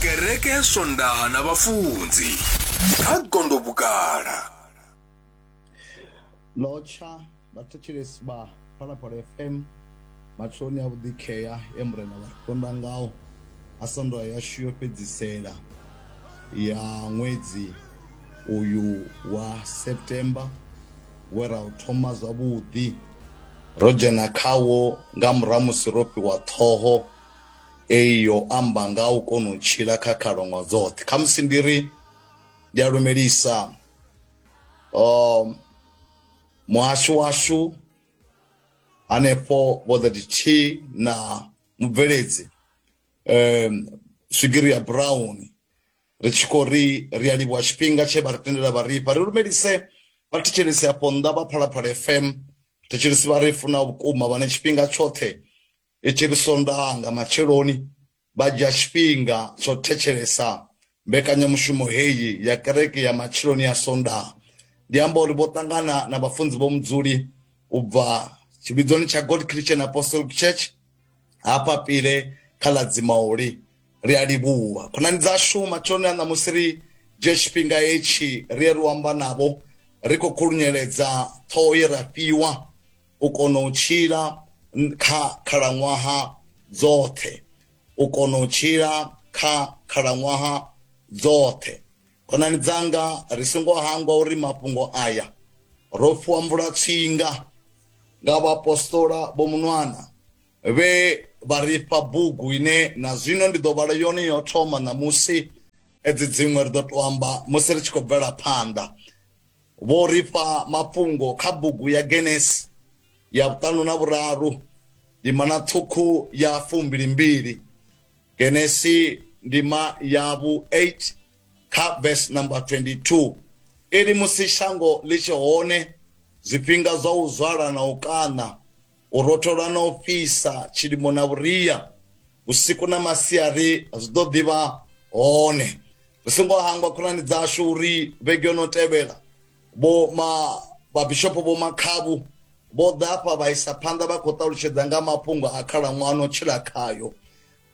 kereke ya swondaha na vhafunzi kha gondo vhukala lotsha vhathetshelesi vha phalaphala fm matsheloni a vhuḓikhea e murena vha konda ngawo a sondoa yashu yo fhedzisela ya ṅwedzi uyu wa september we ra u thoma zwavhuḓi ro dzhena khawo nga murahu musi ro fhiwa ṱhoho eyo amba nga u kona u tshila kha khalaṅwaha dzoṱhe khamusi ndi ri ndi a lumelisa um muhasho washu hanefho vho 33 na mubveledzi um swigiri ya brown ri tshi khou ri ri a livhuwa tshifhinga tshe vha ri tendela vha rifha ri lumelise vha thetshelesi afho nnḓa vha phalaphala fm thetshelesi vha ri funa vhukuma vhane tshifhinga tshoṱhe I tshi ri Sondaha nga matsheloni vha dzhia tshifhinga tsho thetshelesa mbekanyamushumo heyi ya kereke ya matsheloni ya Sondaha. Ndi amba uri vho ṱangana na vhafunzi vho Mudzuli u bva tshivhidzoni tsha God Christian Apostolic Church hafha Pile kha ḽa Dzimauli. Ri a livhuwa khonani dzashu matsheloni a ṋamusi ri dzhie tshifhinga hetshi ri ye ri u amba navho ri khou khulunyeledza ṱhoho ye ra fhiwa u kona u tshila kha khalaṅwaha dzoṱhe u kona u tshila kha khalaṅwaha dzoṱhe khonani dzanga ri songo hangwa uri mafhungo aya ro fhiwa mvula tsinga nga vhaapostola vho munwana vhe vha ri fha bugu ine na zwino ndi ḓo vhala yone yo thoma ṋamusi edzi dziṅwe ri ḓo to amba musi ri tshi khou bvela phanḓa Vho ri fha mafhungo kha bugu ya Genesi ya vhuṱanu na vhuraru ndimana ṱhukhu ya fumbili mbili. Genesi ndima ya vhu 8 kha vese number 22 iri, Musi shango ḽi tshe hone, zwifhinga zwa u zwala na u kaṋa u rothola na u fhisa, tshilimo na vhuria, vhusiku na masiari zwi ḓo ḓi vha hone. Ri songo hangwa khonani dzashu uri vhege yo no tevhela vho ma vhabishopo vho makhavhu vho ḓa afha vha isa phanḓa vha khou ṱalutshedza nga mafhungo a khalaṅwaha no tshila khayo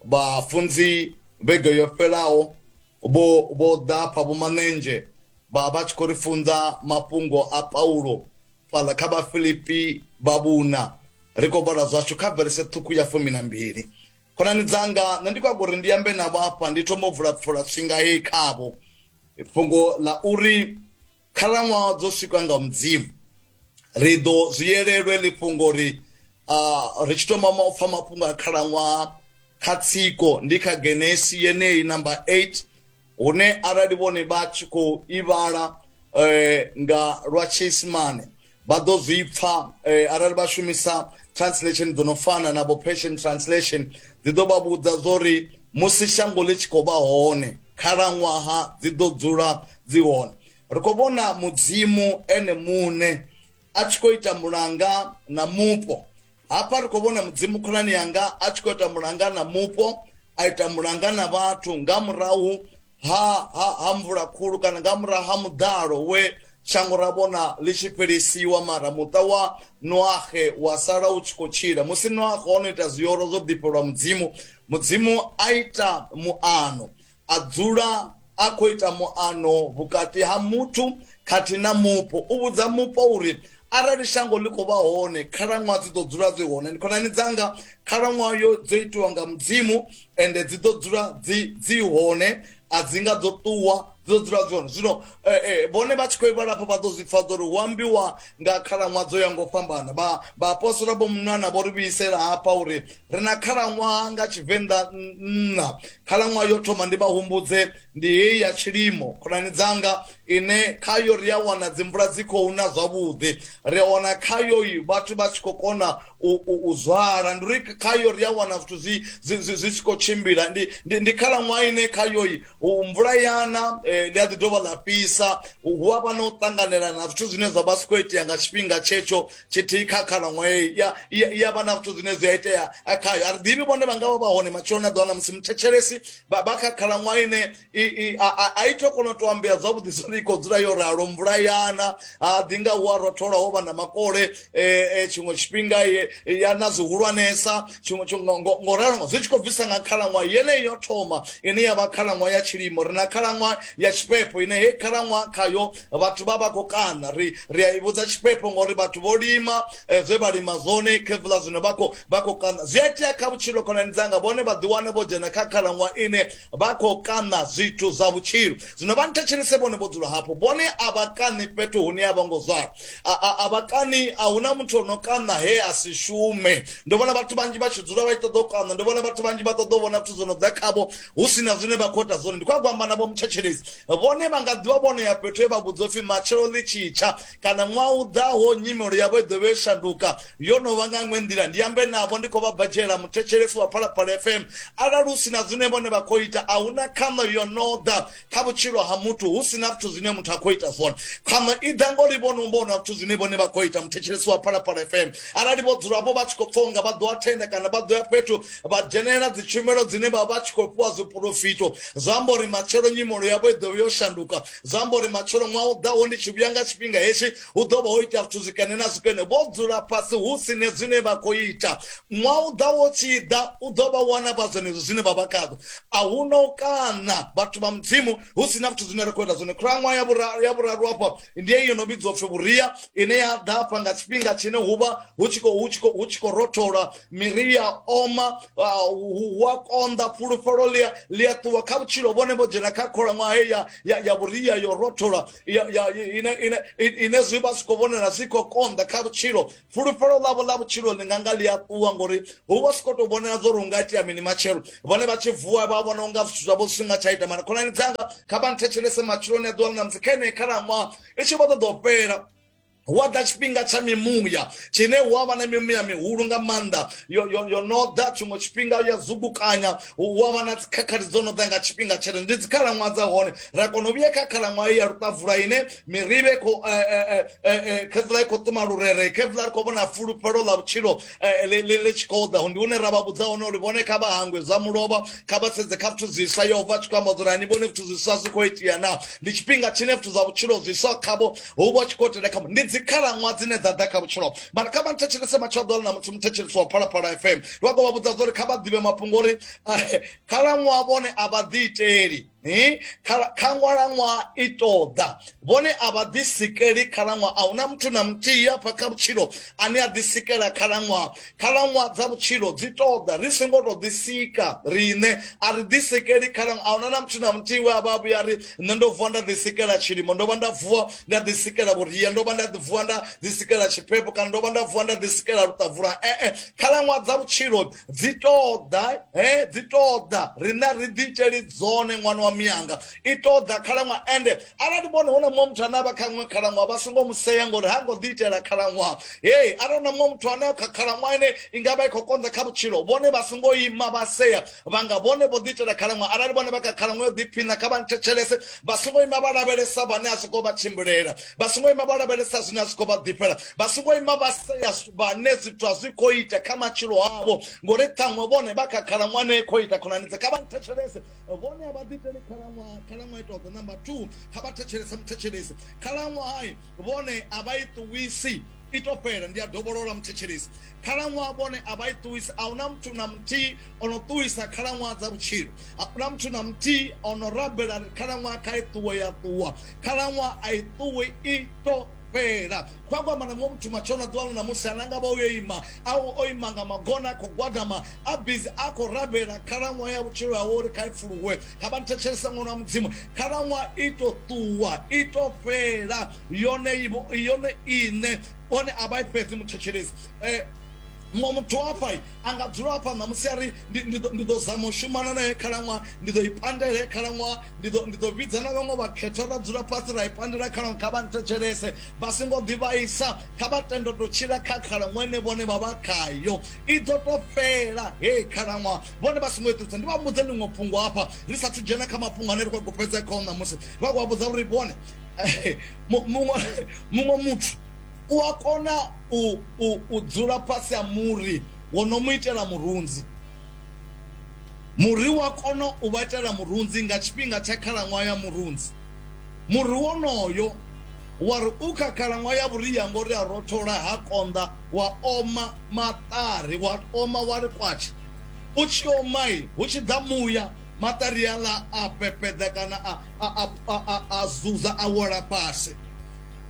vhafunzi vhege yo fhelaho vho vho ḓa afha vho manenzhe vha vha tshi khou ri funza mafhungo a paulo fhaḽa kha vhafilipi vha vhuna ri khou vhala zwashu kha verese ṱhukhu ya fumi na mbili khonani dzanga nṋe ndi khou a uri ndi ambe navho afha ndi thoma u vula pfula swinga heyi khavho fhungo ḽa uri khalaṅwaha dzo swikwa nga mudzimu ri ḓo zwi yelelwe ḽi fhungo uri ri tshi thoma u pfha mafhungo a khalaṅwaha kha tsiko ndi kha genesi yeneyi namba 8 hune arali vhone vha tshi khou ivhala eh, nga lwa tshiisimane vha ḓo zwi pfa eh, arali vha shumisa translation dzo no fana na vho passion translation dzi ḓo vha vhudza zwo ri musi shango ḽi tshi khou vha hone khalaṅwaha dzi ḓo dzula dzi hone ri khou vhona mudzimu ene muṋe a tshi khou ita mulanga na mupo hafha ri khou vhona mudzimu khonani yanga a tshi khou ita mulanga na mupo a ita mulanga na vhathu nga murahu ha, ha, ha mvula khulu kana nga murahu ha muḓalo we shango ra vhona ḽi tshi fhelisiwa mara muṱa wa noahe wa sala u tshi khou tshila musi noahe o no ita zwiyoro zwo ḓifhelwa mudzimu mudzimu a ita muano A dzula a khou ita muano vhukati ha muthu khathihi na mupo. U vhudza mupo uri, Arali shango ḽi khou vha hone, khalaṅwaha dzi ḓo dzula dzi hone. Ndi khonani dzanga, khalaṅwaha yo dzo itiwa nga Mudzimu, ende dzi ḓo dzula dzi dzi hone, a dzi nga ḓo ṱuwa, dzi ḓo dzula dzi hone. Zwino vhone vha tshi khou vhala afho, vha ḓo zwi pfa zwa uri hu ambiwa nga khalaṅwaha dzo yaho nga u fhambana. Vha, vhaapostola vho mu nwa na vho ri vhuisela hafha uri ri na khalaṅwaha nga tshivenḓa nṋa khalaṅwaha yo thoma ndi vha humbudze ndi heyi ya tshilimo khonani dzanga ine khayo ri a wana dzimvula dzi khou na zwavhuḓi ri a wana khayo vhathu vha tshi khou kona u zwala ndi uri khayo ri a wana zwithu zwi zwi tshi khou tshimbila ndi ndi khalaṅwaha ine khayo mvula yana eh, ḽi a ḓi dovha ḽa fhisa hu a vha na u ṱanganelana na zwithu zwine zwa vha si khou itea nga tshifhinga tshetsho tshithihi kha khalaṅwae ya ya vha na zwithu zwine zwi a itea khayo a ri ḓivhi vhone vha nga vha vha hone matshelo na ḓiwana musi muthetshelesi vha kha khalaṅwaha ine a i to kona u to ambea zwavhuḓi zwori i khou dzula yo ralo mvula yana ha ḓi nga hu a rothola ho vha na makole um tshiṅwe tshifhinga ya na zwihulwanesa tshiṅwe ngo ralo zwi tshi khou bvisa nga khalaṅwaha yeneyi yo thoma ine ya vha khalaṅwaha ya tshilimo ri na khalaṅwaha ya tshifhefho ine hei khalaṅwaha khayo vhathu vha vha khou kaṋa ri ri a i vhudza tshifhefho ngori vhathu vho lima eh, zwe vha lima zwone khevula zwino vha khou vha khou kaṋa zwi a itea kha vhutshilo khonani dzanga vhone vha ḓiwane vho dzhena kha khalaṅwa ine vha khou kaṋa zwithu zwa vhutshilo zwino vha nthetshelese vhone vho dzula hafho vhone a vha kaṋi fhethu hune a vho ngo zwala a vha kaṋi a hu na muthu o no kaṋa he a si shume ndo vhona vhathu vhanzhi vha tshi dzula vha tshi ṱoḓa u kaṋa ndo vhona vhathu vhanzhi vha ṱoḓa u vhona zwithu zwo no ḓa khavho hu si na zwine vha khou ita zwone ndi khou a gwamba navho mutshetshedezi vhone vha nga ḓivha vhono ya fhethu he vha vhudzwa upfi matshelo ḽi tshitsha kana ṅwaha u ḓaho nyimelo yavho i ḓo vhe shanduka yo no vha nga ṅwe nḓila ndi ambe navho ndi khou vha badzhela muthetshelesi wa phalaphala fm arali hu si na zwine vhone vha khou ita a hu na khaṋo yo no ḓa kha vhutshilo ha muthu hu si na zwithu zwine muthu a khou ita zwone khaṅwe i ḓa ngori vho no vhona zwithu zwine vhone vha khou ita muthetshelesi wa phalaphala fm arali vho dzulapo vha tshi khou pfhonga vha ḓo athenda kana vha ḓo ya fhethu vha dzhenelela dzi tshumelo dzine vha vha tshi khou fhiwa zwiporofito zwi amba uri matshelo nyimolo yavho i ḓovha yo shanduka zwi amba uri matshelo ṅwaha u ḓaho ndi tshi vhuya nga tshifhinga hetshi hu ḓo vha ho ita zwithu zwikene na zwikene vho dzula fhasi hu sine zwine vha khou ita Ṅwaha u ḓaho u tshi ḓa, u ḓo vha wana vha zwenezwo zwine vha vha khazwo. A hu na u kaṋa, vhathu vha Mudzimu, hu si na zwithu zwine ra khou ita zwone. Khalaṅwaha ya vhuraru, ya vhuraru afha, ndi heyi yo no vhidzwa u pfi vhuria, ine ya ḓa afha nga tshifhinga tshine hu vha hu tshi khou hu tshi khou hu tshi khou rothola, miri i a oma, ah, hu hu a konḓa, fhulufhelo ḽi a ḽi a ṱuwa kha vhutshilo. Vhone vho dzhena kha khalaṅwaha heyi ya ya ya vhuria yo rothola, ya ya ine ine ine zwi vha zwi khou vhonala zwi khou konḓa kha vhutshilo, fulufhelo ḽavho ḽa vhutshilo ḽi nga nga ḽi a ṱuwa ngori hu vha si khou tou vhonela zwo ri u nga itea mini matshelo vhone vha tshi vuwa vha vhona unga zwithu zwavho zwi nga tsha ita mara khonani dzanga kha vha nthetshelese matshiloni a ḓuvha ḽa musi kha ine khalaṅwaha i tshi vho ṱoḓa u fhela hu a ḓa tshifhinga tsha mimuya tshine hu a vha na mimuya mihulu nga maanḓa yo no ḓa tshiṅwe tshifhinga ya zugukanya hu a vha na dzikhakhathi dzo no ḓa nga tshifhinga tshele ndi dzikhalaṅwaha dza hone ra kona u vhuya kha khalaṅwaha ya luṱavula ine miribe ko khezila ikho ṱuma lurere khezila ri khou vhona fulufhelo ḽa vhutshilo ḽi tshi khou ḓa ndi hune ra vha vhudza hone uri vhone kha vha hangwe zwa mulovha kha vha sedze kha zwithu zwiswa yehova tshi khou amba dzula ni vhone zwithu zwiswa zwi khou itea na ndi tshifhinga tshine zwithu zwa vhutshilo zwiswa khavho hu vha tshi khou tenda khavho ndi dzikhalaṅwa dzine dza ḓa kha vhutshilo mara kha vha nthetshelese matshelo ḓola na muthu muthetshelesi wa phalaphala fm vha khou vha vhudza zwa uri kha vha ḓivhe mafhungo uri khalaṅwa vhone a vha ḓiiteli hi khalaṅwaha i ṱoḓa vhone a vha ḓisikeli khalaṅwaha a huna muthu na muthihi afha kha vhutshilo ane a ḓisikela khalaṅwaha khalaṅwaha dza vhutshilo dzi ṱoḓa ri songo tou ḓisika riṋe a ri ḓisikeli khalaṅwaha a huna na muthu na muthihi we a vha vhuya ri nṋe ndo vuwa nda ḓisikela tshilimo ndo vha nda vuwa nda ḓisikela vhuria ndo vha nda vuwa nda ḓisikela tshiphepho kana ndo vha nda vuwa nda ḓisikela luṱavula ee khalaṅwaha dza vhutshilo dzi ṱoḓa he dzi ṱoḓa riṋe ri ḓi iteli dzone ṅwana wa miyanga i ṱoḓa khalaṅwaha ende arali vhone hu na muṅwe muthu ane a vha kha ṅwe khalaṅwaha vha songo mu sea ngori ha ngo ḓi itela khalaṅwaha hei arali na muṅwe muthu ane kha khalaṅwaha ine i nga vha i khou konḓa kha vhutshilo vhone vha songo ima vha sea vhanga vhone vho ḓi itela khalaṅwaha arali vhone vha kha khalaṅwaha yo ḓiphina kha vha nthetshelese vha songo ima vha lavhelesa vhane a songo vha tshimbilela vha songo ima vho lavhelesa zwine a zwi khou vha ḓifhela vha songo ima vha sea vhane zwithu a zwi khou ita kha matshilo avho ngori ṱhaṅwe vhone vha kha khalaṅwaha ne khou ita khonani dze kha vha nthetshelese vhone a vha ḓiteli khalaṅwaha khalaṅwaha ita ḓo namba two kha vha thetshelese muthetshelesi khalaṅwaha vhone a vha i ṱuwisi i to fhela ndi a dovholola muthetshelesi khalaṅwaha vhone a vha i ṱuwisi a huna muthu na muthihi o no ṱuwisa khalaṅwaha dza vhutshilo a huna muthu na muthihi o no rabela khalaṅwaha kha i ṱuwe ya ṱuwa khalaṅwaha a i ṱuwi i to fhela kwa kwamba na muṅwe muthu matshona ḓuvha ḽo namusi ana nga vha uyo ima a o ima nga magona a khou gwadama a bizi a khou rabela khalaṅwaha ya vhutshilo hawe uri kha i pfuluwe kha vha nthetshelesa ṅwana wa mudzimu khalaṅwaha i to ṱuwa i to fhela yone yone iṋe one a vha i fhedzi muthetshelesi eh, mwa muthu hafha a nga dzula hafha ṋamusi a ri ndi ḓo zama u shumana naye khalaṅwaha ndi ḓo i pandela he khalaṅwaha ndi ḓo vhidza na vhaṅwe vhakhetha ra dzula fhasi ra i pandela khalaṅwaha kha vha nthetshelese vha songo ḓivhaisa kha vha tendo to tshila kha khalaṅwaha ine vhone vha vha khayo i ḓo to fhela he khalaṅwaha vhone vha songo iṱusa ndi vha mbudze ḽiṅwe fhungo hafha ri sathu dzhena kha mafhungo ane ri khou gopedza khao ṋamusi vha khou vha vhudza uri vhone muṅwe muthu u a kona u dzula fhasi ha muri wo no mu itela murunzi muri wa kona u vha itela murunzi nga tshifhinga tsha khalaṅwaha ya murunzi muri wonoyo wa ri u kha khalaṅwaha ya vhuria ngori a rothola ha konḓa wa oma maṱari wa oma wa ri kwatsha u tshi omai hu tshi ḓa muya Materiala a pepeda kana a, a, a, a, a zuza a wela fhasi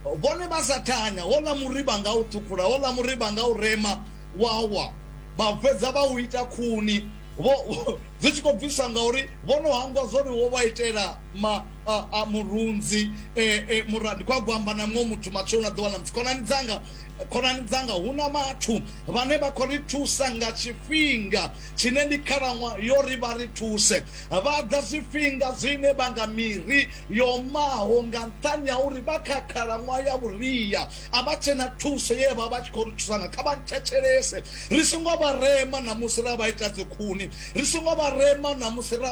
vhone vha sa thanya hola muriba nga u thukhula hola muriba nga u rema wawa vha fhedza vha u ita khuni vho dzi tshi khou bvisa ngauri vho no hangwa zwori wo vha itela ma a, a murunzi e, e, muradi kwa gwamba na muṅwe muthu matsheloni a ḓuvha ḽa musi khonani dzanga khonani dzanga hu na vhathu vhane vha khou ri thusa nga tshifhinga Tshine ndi khalaṅwaha yo ri vha ri thuse. Vha ḓa zwifhinga zwine vha nga miri yo omaho nga nṱhani ha uri vha kha khalaṅwaha ya vhuria, a vha tshe na thuso ye vha vha tshi khou ri thusa ngayo. Kha vha nthetshelese, ri songo vha rema na musi ra vha ita dzikhuni, ri songo vha rema na musi ra vha.